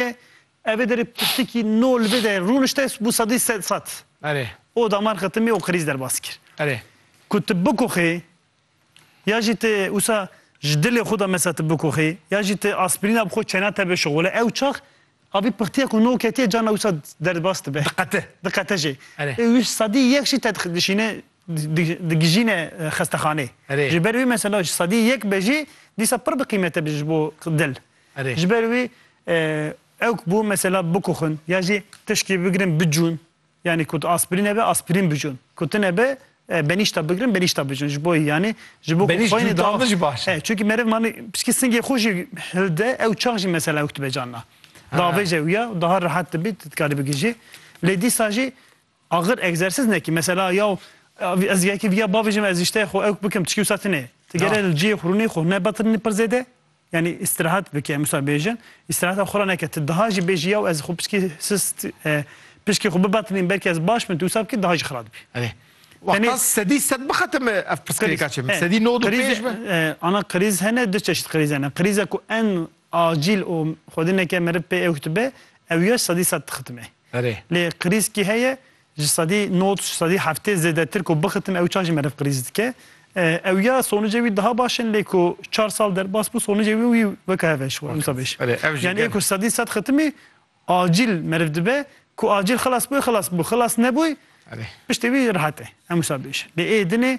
ye. Evê derê pirtikî nol bi de rûnişte bû sedî sed sed. Erê. O damar xetimî o krîz derbas kir. Erê. Ku ti bikoxî ya jî ti wisa ji dilê xwe de mesela ti bikoxî ya jî ti aspirîna bi xwe çêna te bişixole ew çax avî pirtiya ku nol ketiye carna wisa derbas dibe. Diqete. Diqete jî. Erê. Ê wî sedî yek jî te dixişîne digijîne xestexaneyê. Erê. Ji ber wî mesela ji sedî yek be jî dîsa pir bi qîmet e ji bo dil. Ji ber wî ew ku bû mesela bikuxin ya jî tişkî bigirin bicûn yanî ku tu aspirîn hebe aspirîn bicûn ku tu nebe benîşta bigirin benîşta bicûn ji bo yanî ji bo Benîş xweyne cûtan da jî baş e. Çünkü meriv manî pişkî singê xwe jî hilde ew çax jî mesela ew dibe canna. Davêje ew ya daha rehat dibî tu dikarî bigihîjî. Lê dîsa jî Axir egzersîz ne ki mesela ya ez yekî viya bavêjim ez îşteyê xwe ewk bikim tişkî wisa tune. Ti Na. gere li cihê xwe rûnê xwe ne betirînî pir zêde? Yanî îstirahat bike em wisa bêjin. Îstirahata xwe re neke. Ti daha jî bêjî yaw ez xwe pişkî sist e, pişkî xwe bibetirînim belkî ez baş bim tu wisa bikî daha jî xira dibî. Erê. Tenê- Wextan sedî sed bixetime ev pirsgirêka çi min. Sedî nod û Krîz- pênc be. e, Ana krîz hene du çeşît krîz hene. Krîza ku en acîl û xwedî neke meriv pê ewk dibe ew ya sedî sed dixitime. Lê qirîz kî heye ji sedî nod ji sedî heftê zêdetir ku bixitim ew çav jî meriv qirîz dike. Ew ya sonûcê wî diha baş in lê ku çar sal derbas bû sonûcê wî wî weke hev e ji we wisa bêje. Yanî ê ku sedî sed xitimî acîl meriv dibe ku acîl xilas bûye xilas bû xilas nebûy piştî wî rehet e em wisa bêje. Lê ê dinê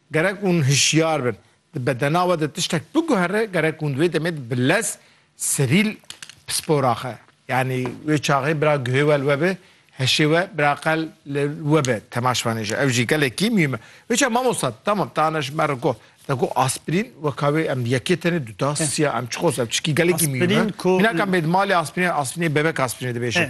Gerek hûn hişyar bin. Di bedena we de tiştek biguhere, gerek hûn di wê demê de bi lez serîl pispor axe. Yanî wê çaxê bira guhê we li we be, heşê we biraqel li we be, temaşvanê jî. Ew jî gelekî mîm e. Wêça mamosta, tamam, ta ana ji me re got. Te got aspirîn, weka wê em yekê tenê duda siya, em çiqos, ev tişkî gelekî mîm e. Mînakan bê di malê aspirînê, aspirînê bebek aspirînê dibêjin.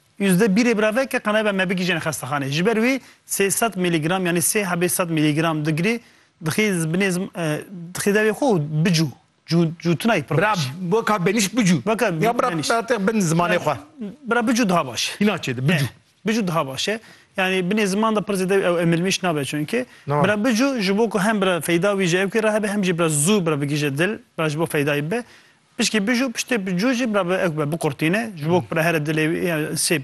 Yüzde birê biraveke qenebe me bigihîjên xestexanê. Ji ber wê sê sed mîlîgram yanî sê hebê sed mîlîgram digirê dixê binê dixê devê xwe û bicû. Cû cû tu nayî pir baş. Bira weka benîşt bicû. Weka Ya bira benîşt. bira te bin zimanê xwe. Bira bicû daha baş e. Hîna çêde bicû. Bicû daha baş e. Yanî binê ziman de pir zêde ew emilmîş nabe çunke. Nava. Bira bicû ji bo ku hem bira feyda wî ji ew kê re hebe hem jî bira zû bira bigihîje dil, bira ji bo feydayî bibe. Pişkî bij û piştê bi cû jî bira bi ekbe biqurtîne. Ji bo ku bira here dilê wî ya sê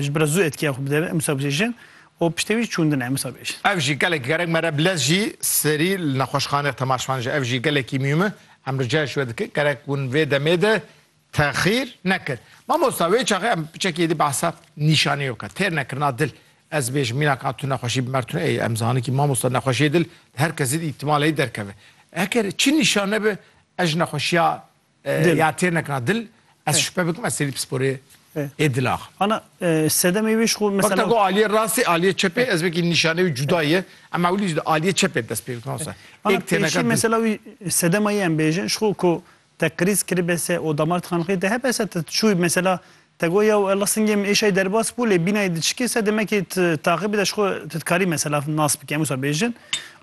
ji bira zû etkiya xwe bide em wisa bêjin û piştê wî çûndine em wisa bêjin. Ev jî gelek gerek mere bilez jî serî li nexweşxane temaşvan ji ev jî gelekî mîm e. Em rica ji we dikin gerek hûn vê demê de texîr nekin. Mamosta wê çaxê em piçekî êdî behsa nîşanîyo ke têr nekirina dil. Ez bêjim mîna ka tu nexweşî bi mertune ê em zanin kî mamosta nexweşiyê dil di her kesî de îhtimaleyî derkeve. Eger çi nîşane be Ez ji nexweşiya ya têr nekirina dil ez şupe bikim ez sêrî pisporê ê dila xwe. Ana sedemê wê ji xwe mesela. Wexta ku aliyê rastê aliyê çepê ez vekî nîşanê wî cuda ye em ewilî ji aliyê çepê dest pê bikin wisa êk têr nekirina dil. Ana mesela wî sedema yê em bêjin ji xwe ku te krîz kiribe se û damar dixeniqî te hebe se te çû mesela te got ya ella singê min êşayî derbas bû lê bînayê diçikê se demekî tu taxîbî de ji xwe tu dikarî mesela nas bikî em wisa bêjin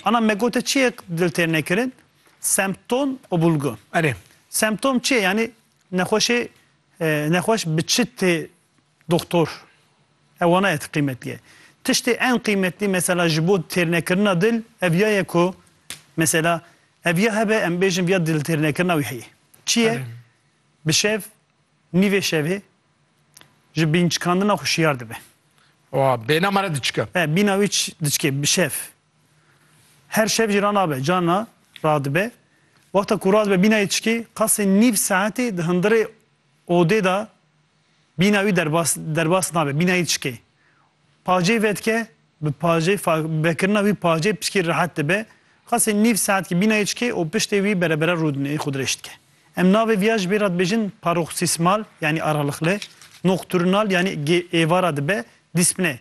ana me got te çiyê dil têr nekirin Semptom û bulgu. Erê. Semptom çi ye? Yanî nexweşê nexweş bi çi tê doxtor? Ew wana ye ti qîmetlî ye. Tiştê en qîmetlî mesela ji bo têrnekirina dil ev ya ye ku mesela ev ya hebe em bêjin viya diltêrnekirina wî heye. Çi ye? Bi şev nîvê şevê ji bînçikandina xwe şiyar dibe. Wa bêhna me re diçike. He bîna wî diçike bi şev. Her şev jî ranabe, carna radibe. Wexta ku radibe bîna yê çikê, qasê nîv saetê di hundirê odê de bîna wî derbas derbas nabe, bîna yê çikê. Pajê vedike, bi pajê fa vekirina wî pajê piştî rehet dibe. Qasê nîv saetkî bîna yê çikê û piştê wî berebere rûdinê xwe dirêj dike. Em navê viya ji bê re dibêjin paroxîsmal yanî aralıklı, nocturnal yanî gê êvara dibe, dîspne.